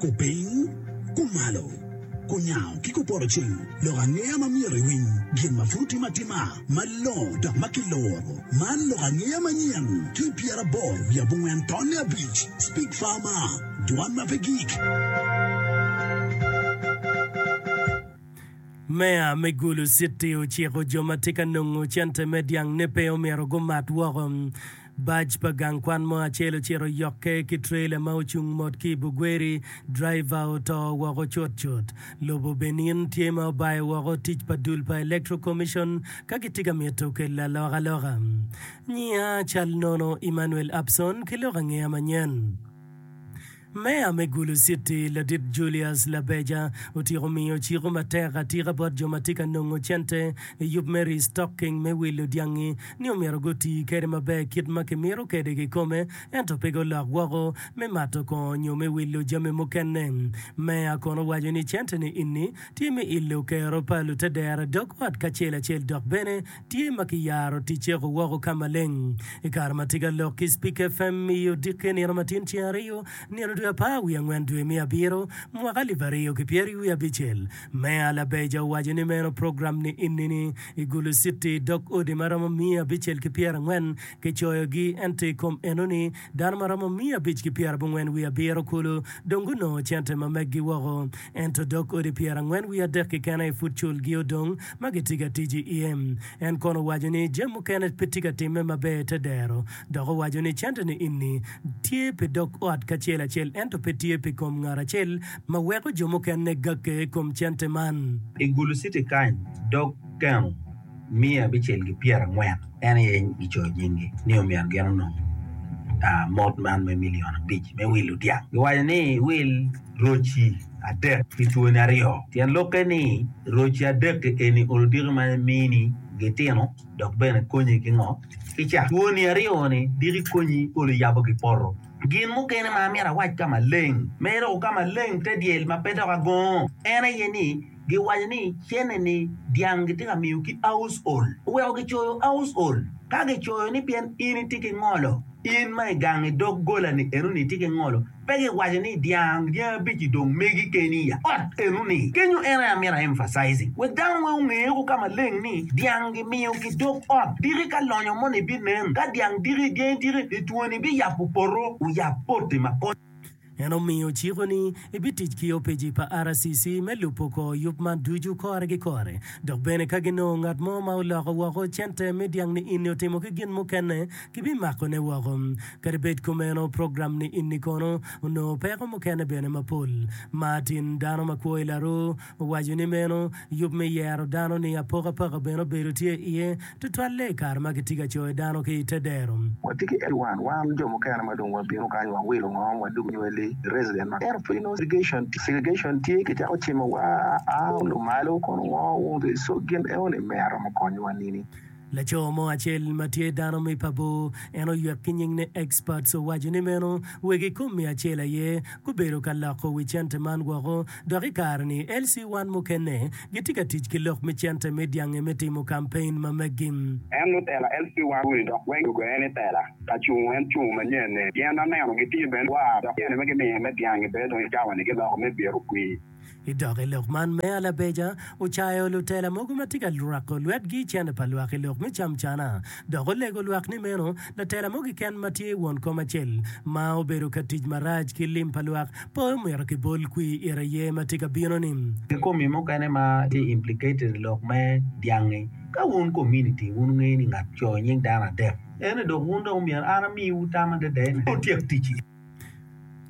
Kupiny, kumalo, kunyango ki kupoto cing, lok angeya ma myero iwiny, gin ma pud otim atima malongo dok ma kiloro. Man lok angeya manyen ki i pyeraboro wiye abongwen tonne abic, Speak Farmer, Dwan ma pe gik. Meya me Gulu City ociko jo ma tye ka nongo cente me dyang ne pe omyero gumat woko. Bac pa gang kwan mo acel ocito oyokke ki trailer ma ocung mot ki i Bugweri, driver oto woko cut cut. Lobo Benin tye ma obayo woko tic pa dul pa Electoral Commission ka gitye ka mito kelo alokaloka. Nyiya cal nono Emmanuel Abson ki lok angeya manyen. Meya me Gulu Citi, Ladit Julius Labeja, otyeko miyo ciko matek atika bot jo ma tye ka nongo cente i yub me restocking me wilo dyangi ni omyero guti kwede maber kit ma kimito kwede kikome ento pe gulok woko me mato kongo nyo me wilo jami mukene. Meya kono owaco ni cente-ni ini tye me ilo kero pa lutedera dog ot kacel acel dok bene tye ma kiyaro tic cego woko ka maleng. I kare ma tika lok ki Spik FM miyo dikke nino matin ceng ariyo, nino dwe apar wiye angwen dwe me abiro mwaka alip ariyo ki pyeri wiye abicel, Meya Labeja owaco ni meno program ni inini i Gulu City dok odi ma romo miya abicel ki pyerangwen kicoyogi ento i kom enoni Dano ma romo miya abic ki pyera abongwen wiye abiro kulu dong gunongo cente ma meggi woko, ento dog odi pyera angwen wiye adek keken aye pud culgi odong ma gitye ka tic iye. En kono owaco ni jami mukene pe tye ka timme maber te dero, dok owaco ni cente-ni ini tye pi dog ot kacel acel ento pe tye pi kom ngat acel ma weko jo mukene gakke i kom cente man. I Gulu City kany, dog keno miya abicel ki pyera angwen en aye gicoyo nyingi ni omyero gin onong mot man me million abic me wilo dyang giwaco ni iwil roci adek ki cwoni aryo tyen lokke ni roci adek eni olodiki ma emini gitino dok bene konyi ki ngo ki ca cwoni aryo ni diki konyi olo yabo ki poto gin mukene ma amyero awac ka maleng me doko ka maleng te dyel ma pe dok agongo en aye ni Giwaco ni cene-ni dyang gitye ka miyo ki aucl. Oweko gicoyo aucl. Ka gicoyo ni pien in itye ki ngolo, in ma i gang i dog gola-ni enoni itye ki ngolo, pe giwaco ni dyang dyangi abic-ci dong megi keni i ot enoni. Kenyo en aye amito a emphasizing wek dano weng onge woko ka maleng ni dyang gimiyo ki dog ot. Diki ka lonyo moni binen, ka dyang diki, dyangi diki, litwoni biyabo poto, wuyab poti ma konyo. En omiyo ciko ni ebitic ki opc pa RCC me lubo kor yub man ducu kore ki kore. Dok bene ka ginongo ngat mo ma oloko woko cente me dyang ni inni otimo ki gin mukene, gibimakone woko. Kadi bed kumeno, program ni inni kono onongo peko mukene bene mapol. Martin, dano ma kwo i laruu, Owaco ni meno yub me yero dano ni apokapaka bene obedo tye iye, tutwalle i kare ma kitye ka coyo dano ki i te dero. Watye ki Edward, wan jo mukene ma dong wabino kany wawilo ngom, wadug nywelli, resident ma ento pud inongo segregation tye, segregation tye, kicako cimo wa a lumalo kono wongo wung ki, so gin eo ni me aromo konyowa nini? Laco mo acel ma tye dano me pa bor, en oywek ki nying ni Experts owaco ni meno wegi ikom miya acel aye gubedo ka loko wi cente man woko dok i kare ni LC one mukene gitye ka tic ki lok me cente me dyange me timo campaign ma meggi. En ni tela LC one uni dok weng gugoye ni tela ka cungo en cungo manyen ne pien aneno gitye bene war dok tyene me gimiyo me dyangi bene dong i cawa ni giloko me byero kwir. I dok i lok man, Meya Labeja ocayo lutela mogo ma tye ka rwako lwetgi i cente pa lwak i lok me camcana, dok olego lwak ni meno latela mo keken ma tye won kom acel ma obedo ka tic marac ki lim pa lwak pe omyero kibol kwir ite aye ma tye ka bino-ni. Ki komi mukene ma tye implicated i lok me dyangi, ka wun kominiti wun wungeyo ni ngat ocoo nying dano adek, ene dok wun dong myero an amiwu tam adada ni wutyek tic-ci.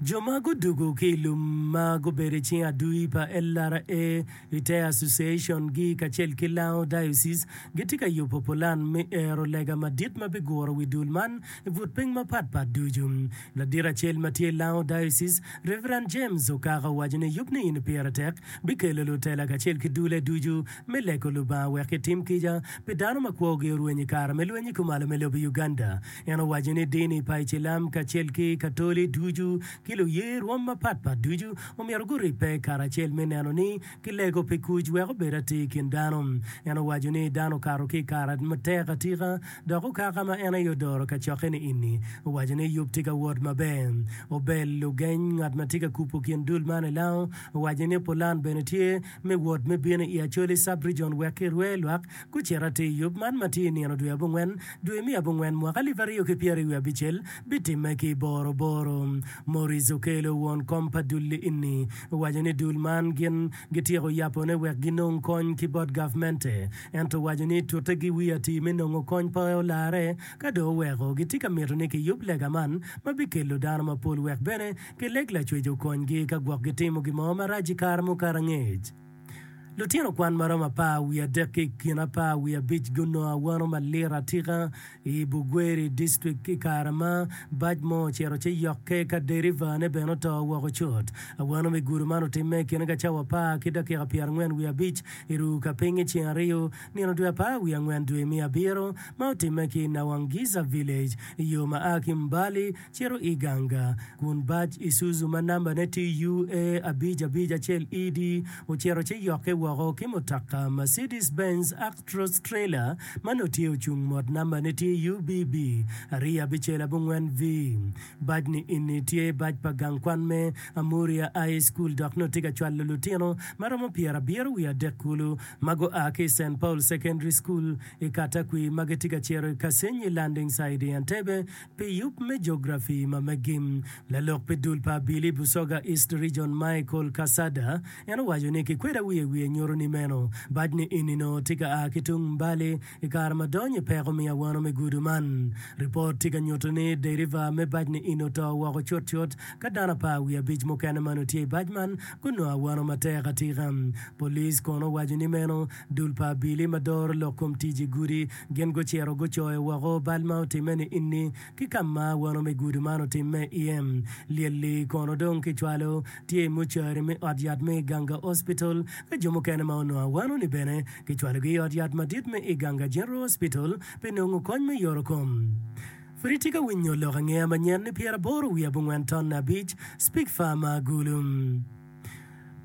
Jo ma gudwogo ki i lum ma gubedo i cing adui pa LRA, Retail Association, gi kacel ki Lango Diocese gitye ka yubo pulan me ero lega madit ma biguro wi dul man i but piny mapatpat ducu. Ladit acel ma tye i Lango Diocese, Rev. James Okaka owaco ni yub ni eni pire tek bikelo lutela kacel ki dulle ducu me lego Lubanga wek gitim kica pi dano ma kwogi orwenyo i kare me lweny i kumalo me lobo Uganda. En owaco ni dini pa Icilam kacel ki Katoli ducu ki luye rwom mapatpat ducu omyero guribbe karacel me neno ni kilego pi kuc wek obed atir i kin dano. En owaco ni dano okato ki i kare matek atika dok okaka ma en aye odoro kacokke ni ini. Owaco ni yub tye ka wot maber. Obel Lugeny, ngat ma tye ka kubo kin dul man i Lao, owaco ni pulan bene tye me wot me bino i Acholi Sub-Rijon wek kirwe lwak Gucito atir i yub man ma tye i nino dwe abongwen, dwe me abongwen, mwaka alip aryo ki pyeraryo wiye abicel, bitimme ki i Boroboro. Maurice Okelo, won kom pa dul-li enni, owaco ni dul man gin gityeko yapone wek ginong kony ki bot gavmente, ento owaco ni tute gi wi atir me nongo kony pe olarre ka dong oweko gitye ka mito ni kiyub lega man ma bikelo dano mapol wek bene gileg lacwec okonygi ka gwok gitimo gin mo marac i kare mukato angec. Lutino kwan ma romo apar wiye adek ki i kin apar wiye abic gunongo awano malit atika i Bugweri district i kare ma bac mo ocito ci yokke ka derivane bene oto woko cut. Awano me gudo man otimme i kine ka cawa apar ki dakika pyerangwen wiye abic i ru ka piny i ceng aryo nino dwe apar wiye angwen dwe me abiro ma otimme ki i Nawangisa village i yo ma a ki Mbali Cito i ganga kun bac Isuzu ma nambane tye UA abic abic acel ED ocito ci yokke woko ki mutoka Mercedes-Benz Actros trailer ma nongo tye ocung mot nambane tye UBB ariyo abicel abongwen V. Bac ni ini tye bac pa gang kwan me Amuria High School dok nongo tye ka cwalo lutino ma romo pyerabiro wiye adek kulu ma gua ki i Saint Paul Secondary School i Katakwi ma gitye ka cito i Kasenyi Landing Site i Entebbe Pi yub me jografi ma me gim, lalok pi dul pa Abili, Busoga East Region, Michael Cassada, en owaco ni kikweda wiye wiye nyuto ni meno bac ni eni onongo tye ka a ki tung Mbale i kare ma dony i peko miya wano me gudu man. Ripot tye ka nyuto ni deriva me bac ni eni oto woko cutcut ka dano apar wiye abic mukene ma onongo tye i bac man gunongo awano matek atika. Police kono owaco ni meno dul pa Abili ma doro lok kom tic i gudi Gin gucito gucoyo woko bal ma otimme ni Inni, ki ka ma wano me gudo man otimme iye. Lyel-li kono dong kicwalo tye i mucwari me ot yat me Iganga Hospital, ka jo mukene ma onongo awano-ni bene kicwalogi i ot yat madit me Iganga General Hospital pi nongo kony me yorokom. Pud itye ka winyo lok angeya manyen ni pyeraboro wiye abongwen tonne abic, Speke Farmer Agulu.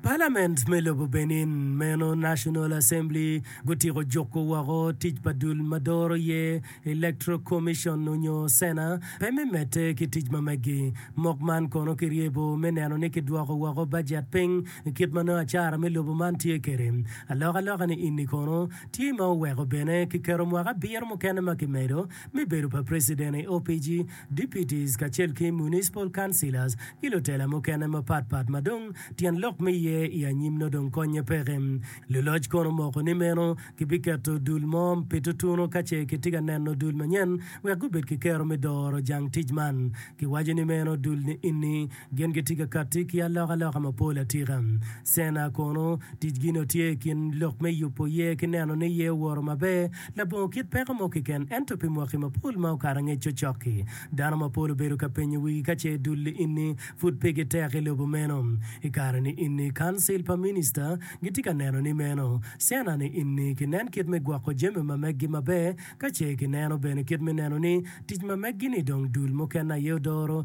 Palament me lobo Benin meno, National Assembly, gutyeko juko woko tic pa dul ma doro ye, Electoral Commission onyo Cena, pe me medde ki tic ma meggi. Mok man kono kiryebo me neno ni kidwoko woko bajet piny kit ma nongo acara me lobo man tye kede. Alokaloka ni ini kono tye ma oweko bene kiketo mwaka abiro mukene ma kimedo me bedo pa Preciden i OPG, Deputies kacel ki Municipal Councillors ki lutela mukene mapat pat ma dong tyen lok me iye i anyim nongo dong konye peke. Luloc kono omoko ni meno kibiketo dul mo pi tutunu ka ce kitye ka neno dul manyen wek gubed ki kero me doro jang tic man. Kiwaco ni meno dul ni ini Gin gitye ka katti ki alokaloka mapol atika. Cena kono, ticgi nongo tye i kin lok me yubo yer ki neno ni yer owoto maber labongo kit peko mo keken. Ento pi mwaki mapol ma okato angec cocok-ki, dano mapol obedo ka penyo wigi ka ce dul ini pud pe gitek i lobo meno. I kare-ni ini, Kancil pa Minista gitye ka neno ni meno. Cena-ni ini, kinen kit me gwoko jami ma meggi maber, ka ce kineno bene kit me neno ni tic ma meggi-ni dong dul mukene aye odoro.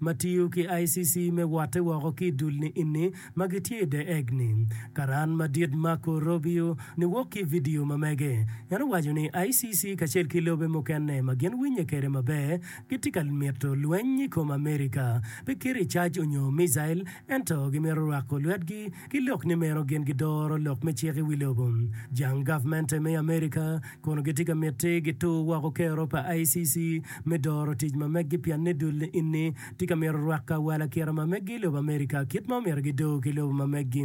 ma tiyo ki ICC me wotte woko ki i dul ni inni ma gitye i The Egg ni, Karan Madit Marco Robio niwok ki i vidio ma mege. En owaco ni ICC kacel ki lobe mukene ma gin winye kede maber gitye ka mito lweny i kom America, pe kit ricac onyo micail, ento gimito rwako lwetgi ki lok ni meno gin gidoro lok me cik i wi lobo jang gavmente me Amerika kun gitye ka miti gitur woko kero pa ICC me doro tic ma meggi pienni dul inni tye ka mito rwako awala kira ma meggi i lobo Amerika kit ma omyero gidor ki lobo ma meggi.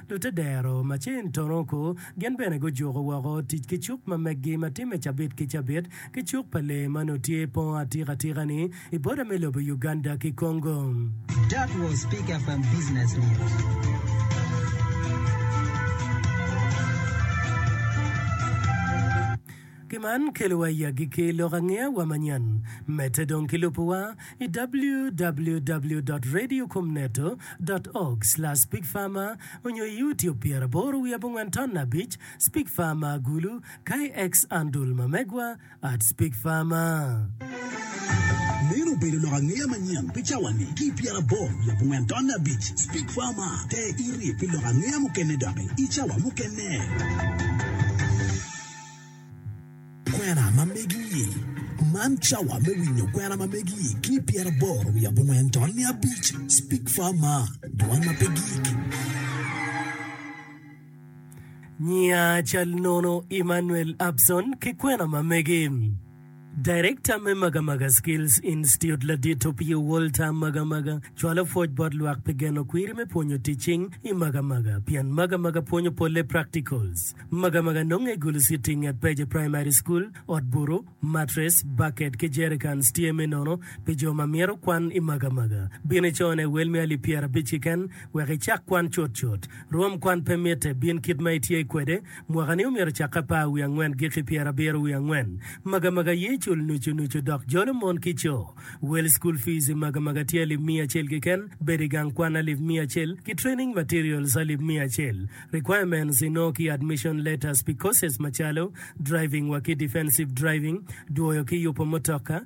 Lute dero macin Toroko gin bene gujuko woko tic ki cuk ma meggi ma timme cabit ki cabit ki cuk pa lee ma nongo tye po atika atika-ni i boda me lobo Uganda ki Congo. That was Peak FM Business News. Ki man kelowa i agikki lok angeya wa manyen. Medde dong ki lubuwa i www dot radio kom neto dot org slash pig farmer onyo i youtube pyera aboro wiye abongwen ton abic spig farmer agulu kae ex andul ma megwa at spig farmer. Meno obedo lok angeya manyen pi cawa ni ki i pyera aboro wiye abongwen ton abic spig farmer ter iri pi lok angeya mukene doki i cawa mukene. Kwena ma megi-i. Man cawa me winyo kwena ma megi-i ki pyeraboro wiye abongwen to niya abic. Speak Far Mar, Dwan ma pe Gik. Nyiya cal nono Emmanuel Abson ki kwena ma megi. Darekta me Magamaga Skills Institute ladit Opio Walter Magamaga cwalo pwoc bot lwak pi geno kwiri me pwonyo tic cing i Magamaga pien Magamaga pwonyo polle practicals. Magamaga nonge i Gulusitti i nget Peje Primary School. Ot butu, matres, baket ki jericans tye me nono pi jo ma myero kwan i Magamaga. Bin icone wel me alip pyerabic kiken wek icak kwan cutcut. Rwom kwan pe mitte, bin kit ma itye kwede. Mwaka-ni omyero ocak apar wiye angwen giki pyerabiro wiye angwen. Magamaga ye cul nucu nucu dok jolo mon ki co. Wel School Fees i Magamaga tye alip miya acel kiken, bedo i gang kwan alip miya acel, ki Training Materials alip miya acel. Requirements inongo ki Admission Letters pi courses macalo, Driving wa ki Defensive Driving, Dwoyo ki yupo mutoka,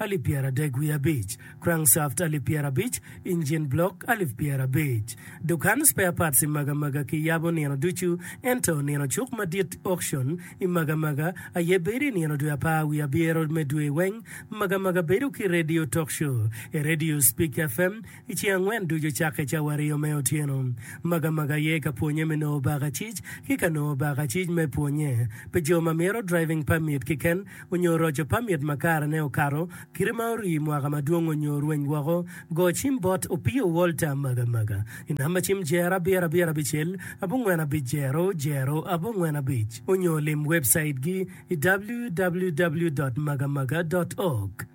alip pyeradek wiye abic, crankshaft alip pyerabic, engine block alip pyerabic. Dukan spare parts i Magamaga kiyabo nino ducu, ento nino cuk madit, auction, i Magamaga aye bedo i nino dwe apar wiye abiro me dwe weng. Magamaga bedo ki radio talk show, e radio Speak FM, I ceng angwen ducu cakke cawa aryo me otyeno, Magamaga aye ka pwonye me nongo bakacic ki ka nongo bakacic me pwonye pi jo ma mito driving permit kiken onyo roco permit ma karene okato kite ma orii mwaka madwong onyo orweny woko. Go cim bot Opio Walter Magamaga i namba cim jer abiro abiro abicel abongwen abic jero jero abongwen abic onyo lim webcaitgi i www.magamaga.org.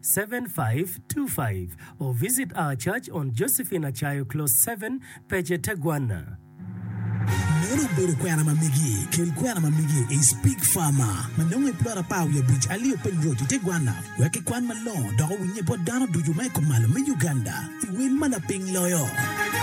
7525 or visit our church on Josephine Acayo Close 7, Peche Teguana. Meno obedo kwena ma migi. Kel kwena ma migi i Spig Farmer ma nongo i plot apar wiye abic Ali openy Road i Teguana wek kikwan malongo dok owinye bot dano ducu ma i kom malo me Uganda i wel ma laping loyo.